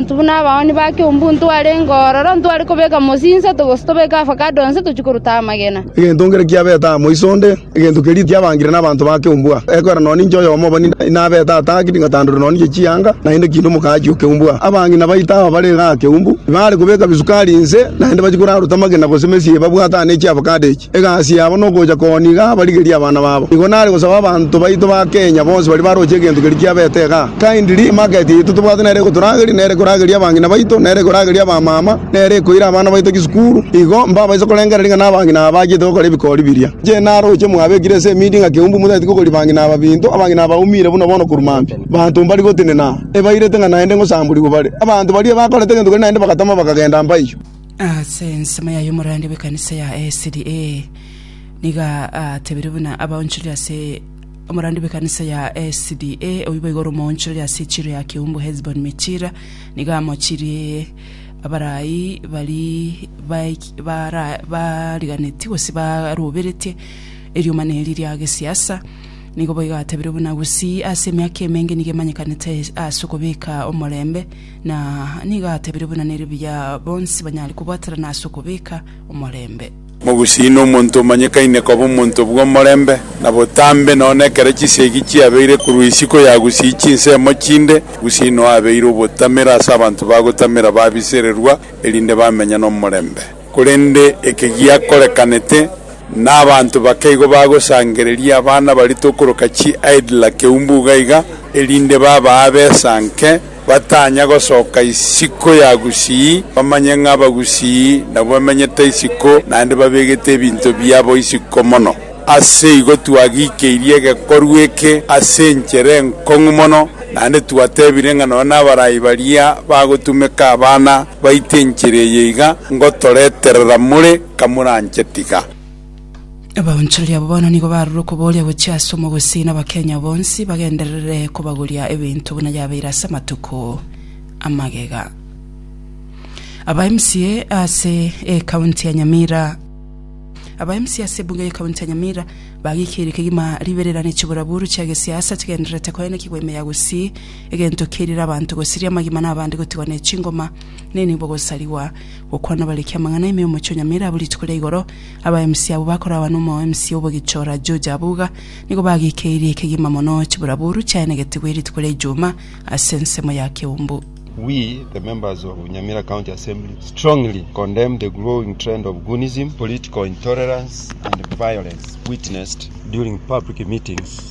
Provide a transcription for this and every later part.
Intwe buna abaoni ba Kiombu ntware ngororo, ntware kobeka mosie insato gose tobeke avocado onsi tochie korutao amagena. Egento nkere kiabete aa moiso onde, egento keria tiabangire nabanto ba Kiombu aa. Ekwera nonye ninche oyomo obo ninde inabete aa tang'akiri ngatandorerwa nonye inche chianga, naende kindo omokaachi o Kiombu aa. Abange na baito aba bare iga aa Kiombu, ibaare kobeka bisukari inse, naende bachie koraruta amagena gose mesie babwate aa ne chiavocado echi. Egasi yabo nogocha koniga abarigerie abana babo. Nigo nare gosaba abanto baito ba Kenya bonsi baria baroche egento keria kiabete igaa. Kindly market yaito tobwate nere egotorageria, nere ekorageria abang'ina baito, nere ekorageria abamama, nere ekoira abana baito chisukuru. Igo mbabaise korengereria ng'a nabang'ina aba bachiete gokora ebikori biria. Inche naroche mwabekire ase emidi ng'a keumbu motageti kokoria bang'ina aba binto, abang'ina aba baumire buna bono korwa mambia. Abanto mbari gotenena, ebairete ng'a naende ngosamborigwe bare. Abanto baria bakorete egento keria naende bagatama bakagenda mpaiyo. Ase ensemo yaye omorwandi bw'ekanisa ya SDA nigo atebirie buna abaonchoreri ase omorwandi bw'ekanisa ya SDA oyio boigo ore omoonchoreri ase echiro ya Keumbu Hesbon Michira nigo amochirie abarai bari baik- bara- bariganetie gose baroberetie erioma na eri ria gesiasa nigo boigo atebirie buna gusii ase emiaka emenge nigo emanyekanete ase okobeka omorembe Na nigo atebire buna nere buya bonsi banyare kobwaterana ase okobeka omorembe. Mogusii nomonto omanyekaine koba omonto bw'omorembe na botambe, nonya nekero chisiegi chiabeire korwa isiko yagusii chinsemo chinde, gusii noyo abeire obotamero ase abanto bagotamera babisererwa, erinde bamenye nomorembe. Korende eke giakorekanete, na abanto bake igo bagosangereria abana baria tokoroka chi-idler keumbu iga iga, erinde babaa besa nke, batanya gosoka isiko ya gusii, bamanye ng'a abagusii nabwo bamenyete isiko, naende babegete ebinto biabo isiko mono. Ase igo twagikeirie egekorwa eke ase enchera enkong'u mono, naende twatebire ng'a nonya nabaraai baria bagotumeka abana. Baite enchera eye iga ngotoreterera more kamoranche tiga. Abaonchori abo bono nigo barure okoboria gochia ase omogusii na Abakenya bonsi bagenderere kobagoria ebinto buna yabeire ase amatuko amagega. Aba mca ase ekaunti ya Nyamira. Aba mca ase ebunge y'ekaunti ya Nyamira bagikeirie kegima ribererane chiburaburu chia gesiasa chigendererete koenekigwa ime ya gusii. egento kerire abanto gosiria amagima na abande gotigwa ne chingoma, nenibo gosarigwa gokwana bare ekia amang'ana ime omochie o Nyamira abwo rituko ria igoro, aba MC abwo bakoragwa na omwa MC o obogichora George Abuga nigo bagikeirie ekegima mono chiburaburu chiaenegetigwe rituko ria Ijuma ase ensemo ya Keumbu. We, the members of Nyamira County Assembly, strongly condemn the growing trend of goonism, political intolerance, and violence witnessed during public meetings.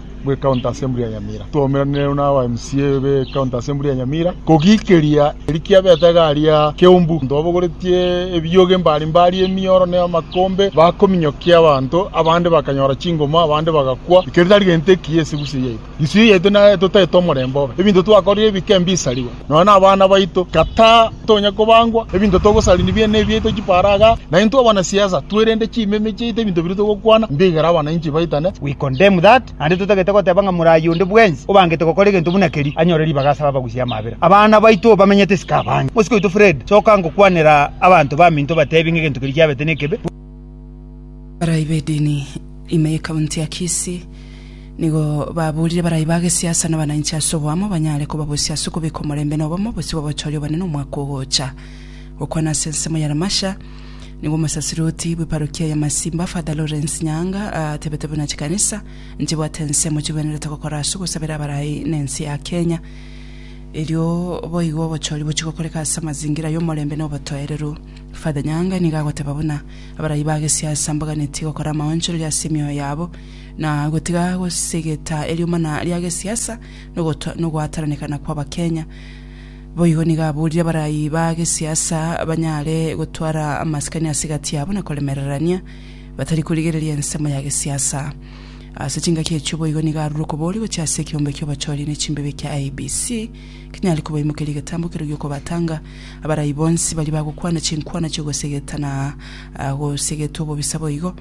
bwe county assembly ya Nyamira twaumeranire na aba MCA be county assembly ya Nyamira kogikeria erikia beta garia keumbu ntobogoretie ebiyoge mbari mbari emioro ne amakombe bakominyokia abanto abande bakanyora chingoma abande bagakwa ikeri tarigente ki esigusi yaitu gisuyo yaitu na totaete omorembe obe ebinto twakorire ebike mbisariwa Nonya nabana baito, kata tonya kobangwa, ebinto togosari nibiane nebiaito chiparaga, na intwe abanasiasa twerende chimeme chiaito ebinto biria togokwana, mbigere abananchi baitane. We condemn that, naende totagete goteba ng'a moraai onde bwensi obangete gokora egento buna keria, anyore ribaga ase abagusia amabera. Abana baito bamenyete isiko abange. Mosike oito Fred, soka ngokwanera abanto baminto batebi ng'a egento keria kiabete nekebe. Barai b'edini ime y'ekaunti ya Kisii. Nigo baboorire barai ba gesiasa na abananchi ase oboamo banyare kobabosia ase okobeka omorembe na obomo bosio babochoorie obonene omwaka ogocha. Gokwana ase ensemo ya Lamasha, nigo omosasiruti bw'eparokia ya Masimba, Father Lawrence Nyaanga, atebete buna chikanisa nchibwate ensemo chigwenerete gokora ase ogosabera abarai na ense ya Kenya. Erio boigo obochoori bochie gokoreka ase amazingira y'omorembe na obotoereru. Father Nyaanga nigo agoteba buna abarai ba gesiasa mbaganeti gokora amaonchoreria ase emioyo yabo, na gotiga gosegeta eriomana ria gesiasa nogoto- nogoataranekana kw'Abakenya. Boigo nigo aburire abarayi ba gesiasa banyare gotwara amasikani ase egati yabo na koremererania, batari korigereria ensemo ya gesiasa. Ase chingaki echio boigo nigo arure okobori gochia ase ekeombe ki'obochoria ne chimbibe kia IEBC kinyare kobaimokeria egetambo keria gi'okobatanga abarayi bonsi baria bagokwana chinkwana chi'ogosegeta na ah, gosegeta obobisa boigo.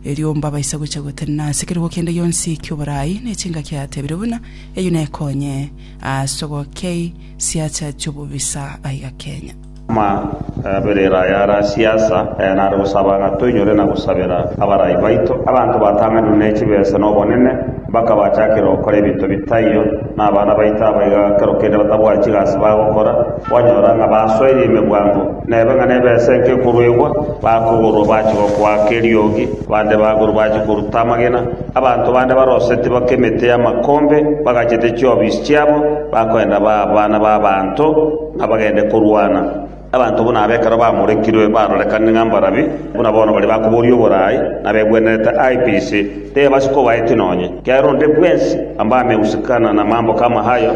erio mbabaise gocha gotenena ase ekerogo kende gionsi ki'oboraai, ne chingaki atebire buna eyio nekonye ase ogokei siacha chi'obobisa aiga Kenya. Amaberero aya are asiasa, aya nare gosaba ng'a toinyore na gosabera abarai baito, abanto batang'anire ne chibesa na obonene, mpaka bachakere gokora ebinto bitaiyo, na abana baito abaiga ekero kende batabwati chigasi bagokora, kwanyora ng'a basoire emegwango. Na ebe ng'a nebesa enke ekoruegwa, bakogorwa bache gokoaka eriogi, bande bagorwa bache koruta amagena, abanto bande baroseti baka emete y'amakombe, bagachete chiobisi chiabo, bakoenda baa abana b'abaanto, ng'a bagende korwana. Abanto buna aba ekero bamorekirwe barorekanire ng'a mbarabi, buna bono baria bakoboria oboraai, na begwenerete aye pisi, teba sikobaeti nonye. Ekiagera onde bwensi, amba amegusikana na amamboka amahayo,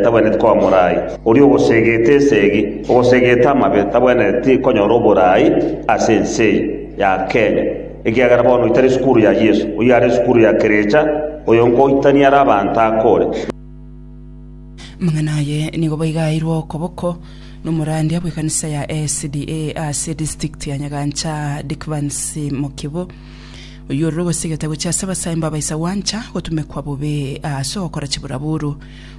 tabwenereti koba moraai. Oria ogosegete esegi, ogosegete amabe tabwenereti konyora oboraai ase ense eye ya Kenya, ekiagera bono oitari esukuru ya Yeso, oyio are esukuru ya kerecha, oyo nkoitani are abanto akore. Amang'ana aye nigo boigo aeirwe okoboko nomorandia bw'ekanisa ya SDA ase edistrict ya Nyagancha Dickvance Mokibo, oyio ororo ogosegete gochia ase abasaimba abaisa gwancha gotumekwa bobe ase ogokora chiburaburu.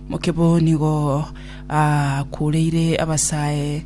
Mokebo nigo akureire abasae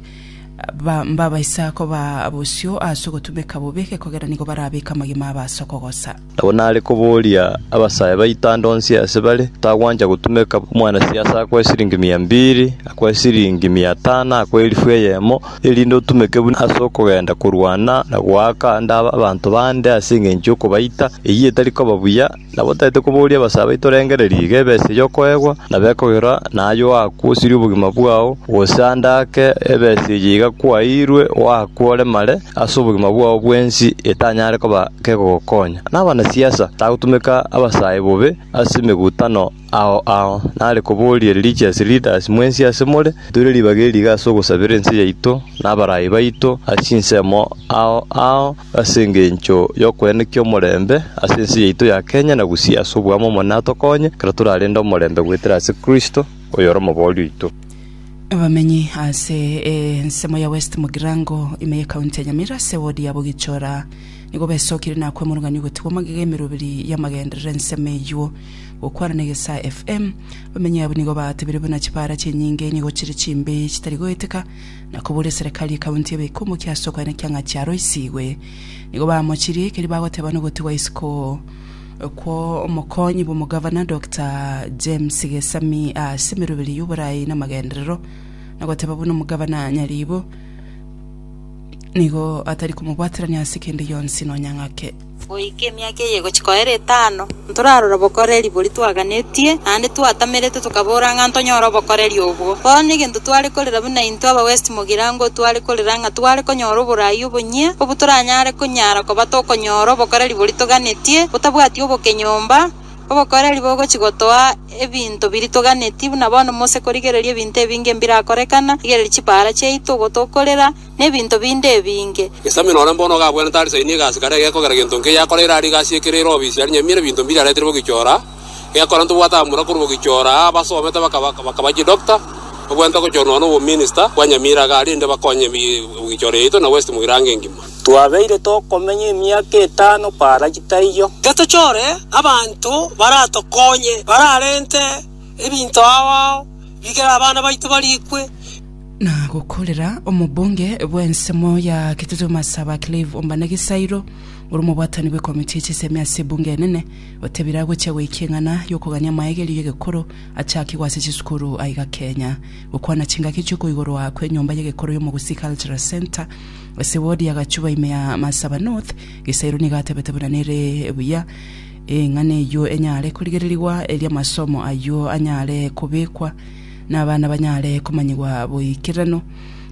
b'abaisako ba bosio ase ogotumeka bobe, gekogera nigo barabeke amagima abo ase okogosa. Nabo nare koboria abasae baito ande onsi ase bare, Tagwancha gotumeka omwanasiasa akwa esiringi mia mbiri, akwa esiringi mia tano, akwa elifu eyemo, erinde otumeke buna ase okogenda korwana na goaka ande abanto bande ase engencho y'okobaita? Eyio etari koba buya. Nabo taete kobooria abasae baito rengereria iga ebese y'okoegwa na bekoirora naye oakwe osirie obogima bwao, gose ande ake ebese eye iga kwaeirwe oakwe oremare ase obogima bwao bwensi etanyare koba kegogokonya. Nabanasiasa tagotumeka abasae bobe ase emegutano. Ao ao, nare koboria religious leaders mwensi ase more, toire ribaga eri iga ase ogosabera ense yaito na abarai baito ase chinsemo ao ao ase engencho y'okoenekia omorembe ase ense yaito ya Kenya na Gusii ase obwamo omonene atokonye ekero torarende omorembe goetera ase Kristo oyore omobori oito. Abamenyi ase ensemo ya West Mugirango ime ye county ya Nyamira ase ewodi ya Bogichora nigo besokirie na kwemurungania ogotigwa magega emeroberi y'amagenderera ensemo eyio. gokwana na egesaa FM, bamenyi abwo nigo baatebire buna chipaara chi'enyinge nigo chire chimbe chitari goeteka, na koboria eserekari y'ekaunti ebe ekomokia ase okoenekia ng'a chiaroisigwe. Nigo baamochirie, keria bagoteba nogotigwa isiko kwa omokonyi bw'omogavana Dokta James Gesami ase emeroberi y'oboraai na amagenderero, na goteba buna omogavana Nyaribo nigo atari komobwaterania ase kende gionsi nonya ng'ake. Goika emiaka eye egochia koera etano, ntorarore obokoreri boria twaganetie, naende twatamerete tokabora ng'a ntonyore obokoreri obwo. Bono egento tware korera buna intwe aba West Mogirango tware korera ng'a tware konyora oboraai obonyia obwo toranyare konyara koba tokonyora obokoreri boria toganetie botabwati oboke nyomba, obokoreri bogochia gotoa ebinto biria toganetie buna bono mose korigereria ebinto ebinge mbirakorekana, rigereria chipaara chiaito, ogotokorera, nebinto binde ebinge. Gesami nore mbono iga abwenerete arisaini egasi kare egekogera gento nkeiyo akoreire aria egasi ekere ere obisi aria nyamiera ebinto mbiria aretire bogichora egekora ntobwate abamura korwa bogichora aa abasomete bakaba bakaba chidoctor obwenerete gochora nonya nobo minister bwa nyamiera iga aria inde bakonye bi bogichora yaito na west mogirango engima. Twabeire tokomenya emiaka etano paraji taiyo. Getochore abanto baratokonye bararente ebinto ao ao bikere abana baito barikwe. na gokorera omobunge bw'ensemo ya Kitutu Masaba Clive Ombane Gisairo, ore omobwatani bw'ekomiti ya chisemi ase ebunge enene, otebire agochia goika eng'ana y'okogania amaegerio y'egekoro achakigwe ase chisukuru aiga Kenya. Gokwana chingaki chi'okoigorwa kw'enyomba y'egekoro y'Omogusii Cultural Centre ase ward ya Gachuba ime ya Masaba North, Gisairo nigo atebete buna nere buya eng'ana eyio enyare korigererigwa erio amasomo ayio anyare kobekwa na abana banyare komanyigwa boikeranu,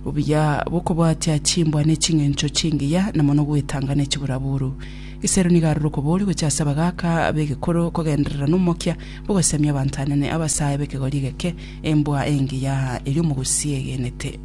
obuya bw'okobwatia chimbwa ne ching'encho chingiya, na mono gwetanga ne chiburaburu. Isero nigo aroro okoboria gochia ase abagaaka b'egekoro kogenderera n'omokia bw'ogosemia abanto anene, abasae b'ekegori egeke, embwa engiya eria omogusi egenete.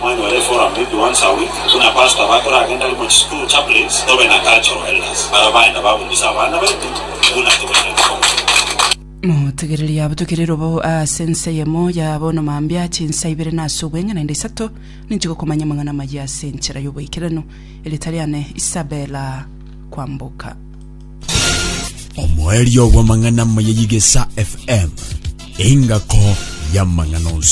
Mwanyora eforum maybe once a week buna pastor bakoragenda arimo chisukuru chaplains tobe na cultural elders baria baenda baburugisa abana baitu buna tobaire gokora. Motegereri yabo tokire robo aase ense eyemo ya bono mambia ache inse aibere na ase obweng'e naende isato ninche gokomanya amang'ana amayia ase enchera y'oboikeranu, erieta riane Isabella Kwamboka. Omoerio bw'amang'ana amaya y'Igesa FM, engako y'amang'ana onsi.